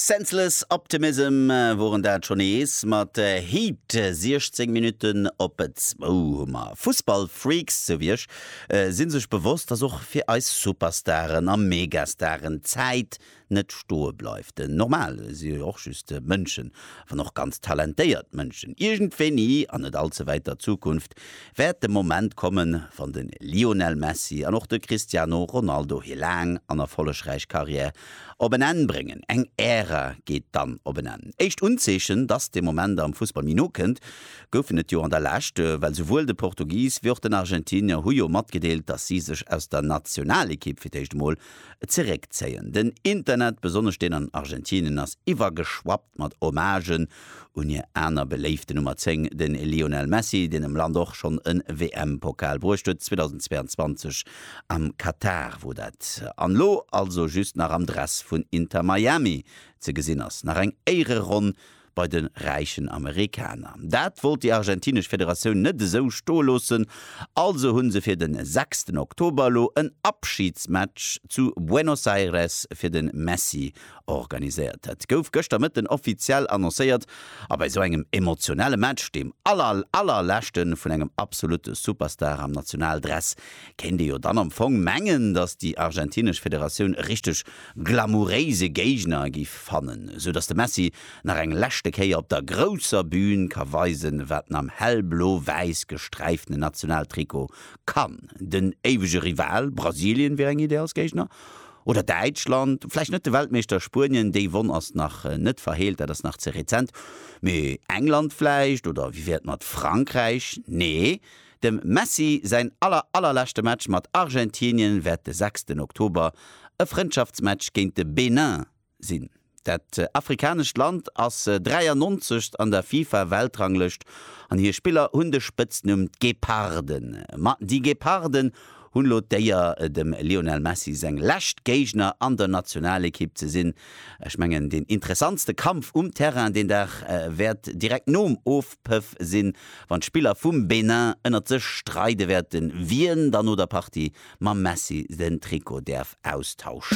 Senseless Optimism woren dat scho nees mat Heat. 16 Minutten op zwou hu mer. Fussballfreaks sou wéi ech si sech bewosst, dass och fir eis Superstaren a Megastaren d'Zäit net stoe bleift. Normal, si jo och just Mënschen, wann och ganz talentéiert Mënschen. Iergendwéini, an net all ze wäiter Zukunft, wäert de Moment kommen, wann de Lionel Messi an och de Cristiano Ronaldo hir laang an erfollegräich Karriär op en Enn bréngen. Eng Ära geet dann op en Enn. Éischt Unzeechen, dass dee Moment am Fussball méi no kënnt, goufen et jo an der Lescht, well souwuel de Portugis wéi och den Argentinier hu jo matgedeelt, dass si sech aus der Nationalekipp fir d'éischt emol zeréckzéien. Den Internet, besonnesch deen an Argentinien, ass iwwergeschwappt. mat Hommagen un hir aner beléifte Nummer 10, de Lionel Messi, deen dem Land och schonn e WM-Pokal bruecht huet, 2022 am Katar wor dat, an elo also just nach am Dress vun Inter Miami ze gesinn ass. Nach eng Éiereronn bei de räichen Amerikaner. Dat wollt déi argentinesch Federatioun net esou stoe loossen, also hu se fir de sechsten Oktober elo en Abschidsmatch zu Buenos Aires fir de Messi organiséiert. Dat gouf gëschter Mëtten offiziell annoncéiert a bei esou engem emotionelle Match, deem aller aller leschte vun engem absolutte Superstar am Nationaldress, kéint ee jo dann am Fong mengen, datt déi argentinesch Federatioun e richteg glamouréise Géigner gi fannen, esou datt de Messi nach eng leschte Kéier op der grousser Bün ka weisen, wat en am hellblo-wäiss gesträiftene Nationaltrikot kann. Den éiwege Rival Brasilien wier eng Iddi als Géigner. Oder Däitschland, vläicht net de Weltmeeschter Spuenien, déi Wonn ass nach net verheelt, dat ass nach ze rezent, mee England vläicht? Oder wéi wär et mat Frankräich? Nee, dem Messi säin aller, allerleschte Match mat Argentinien wäert de sechsten Oktober e Frëndschaftsmatch géint de Benin sinn. Dat afrikanescht Land ass 93 an der FIFA-Weltranglëscht an hir Spiller hunn de Spëtznumm d'Geparden. Ma déi Geparden hunn elo d'Éier, dem Lionel Messi seng lescht Géigner an der Nationalekipp ze sinn. Ech mengen, deen interessantste Kampf um Terrain deen Dag wäert direkt nom Ofpëff sinn, wann d'Spiller vum Benin ënnert sech streide wäerten, wien dann no der Partie mam Messi den Trikot däerf austauschen.